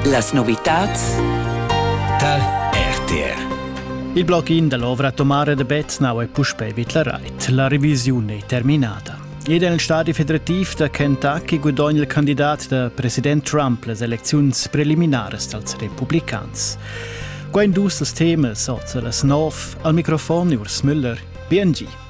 Las novitads tal RTR Il bloc in dall'ovra Tomare de Beznau è puspei vitlarait. La revisione è terminata. Ed è nel stadi federativ da Kentucky guadogna il candidat da president Trump las elecziuns preliminares dals republicans. Qua in dus temas, oza las nov, al microfon Urs Müller, BNG.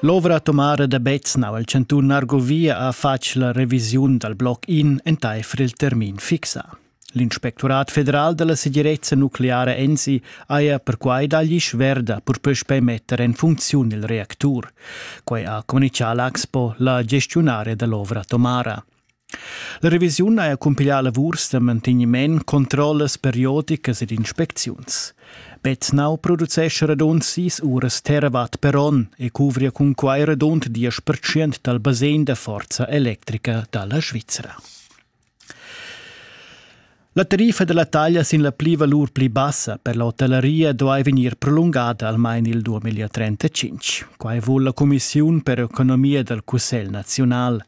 L'ovra atomara da Beznau al cantun Argovia ha fatg la revisiun dal bloc in entaifer il termin fixà. L'inspectorat federal da la segirezza nucleara ENSI haja perquai dagli sverda per puspei metter en funziun il reactur. Quai ha communichà l'Axpo, la gestiunaria da l'ovra atomara. La revisiun haja cumpiglià lavurs da mantegniment, controllas periodicas ed inspecziuns. Betnau producescha radund sis uras terrawatt per onn e cuvria cun quai radund 10% dal basegn da forza electrica da la Svizra. La tariffa dalla taglia sin la plivalur pli bassa per la hotellaria duai vegnir prolungada almain il 2035. Quai vul la cumissiun per economia dal Cussegl naziunal.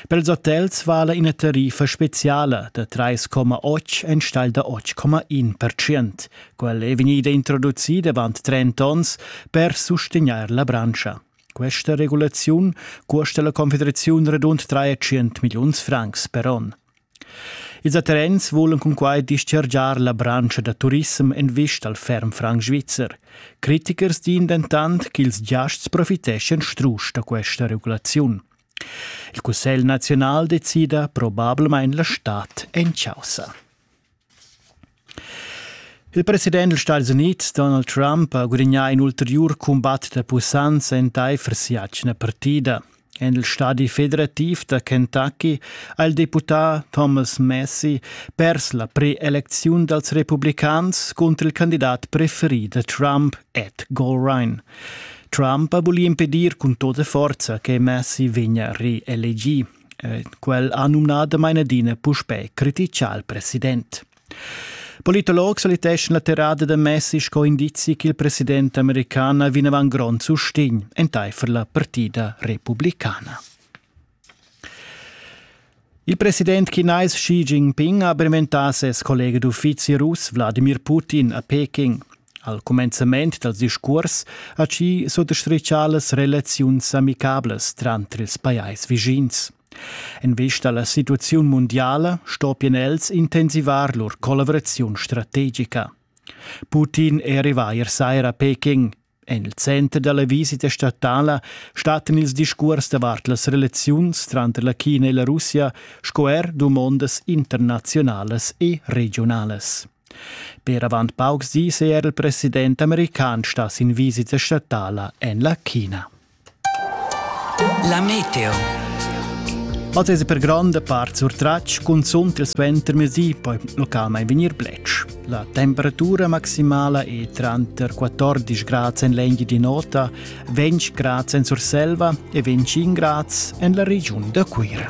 Per ils hotels vala ina tariffa speziala da 3,8 enstagl da 8,1%. Quella è vegnida introducida avant 30 onns per sustegnair la branscha. Questa regulaziun custa la Confederaziun radund 300 milliuns francs per onn. Ils atterrens vulan cunquai dischargiar la branscha da turissem en vista al ferm franc svizzer. Critichers din dentant ch'ils giasts profiteschien strusch da questa regulaziun. Il Cussegl naziunal decida probablamain la stad en chaussa. Il president dals Stats Unids Donald Trump ha gudagnà in ulteriur cumbat da pussanza entaifer si'atgna partida. En il stadi federativ da Kentucky ha il deputà Thomas Massey pers la preelecziun dals republicans cunter il candidat preferì da Trump, Ed Golrine. Trump ha vulì impedir cun tota forza che Massey vegnia reelegì. Quel ha numnà damain adina puspè criticà il president. Politologs valiteschan la terrada da Messi sco indizi ch'il president american ha vinavant grond sustegn entaifer la partida republicana. Il president chinais Xi Jinping ha benventà ses collega d'uffizi russ Wladimir Putin a Peking. Al cumenzament dals discuors ha chi suttostrichà las relaziuns amicablas tranter ils pajais vischins. In vista alla situaziun mundiala stoppien els intensivar lur collaboraziun strategica. Putin è arrivà ier sera a Peking. En il center della visita statala stattan ils discurs davart las relaziuns tranter la China e la Russia sco er dumondas internazionalas e regionalas. Per avant paucs dis è er il president american stà sin visita statala en la China. La meteo. Ma es per gronda part surtratg cunzunt il suentermezdi poi localmente venir blech. La temperatura maximala è tranter 14 gradi en l'Engi di Nota, 20 gradi en Surselva e 25 gradi en la regione da Cuira.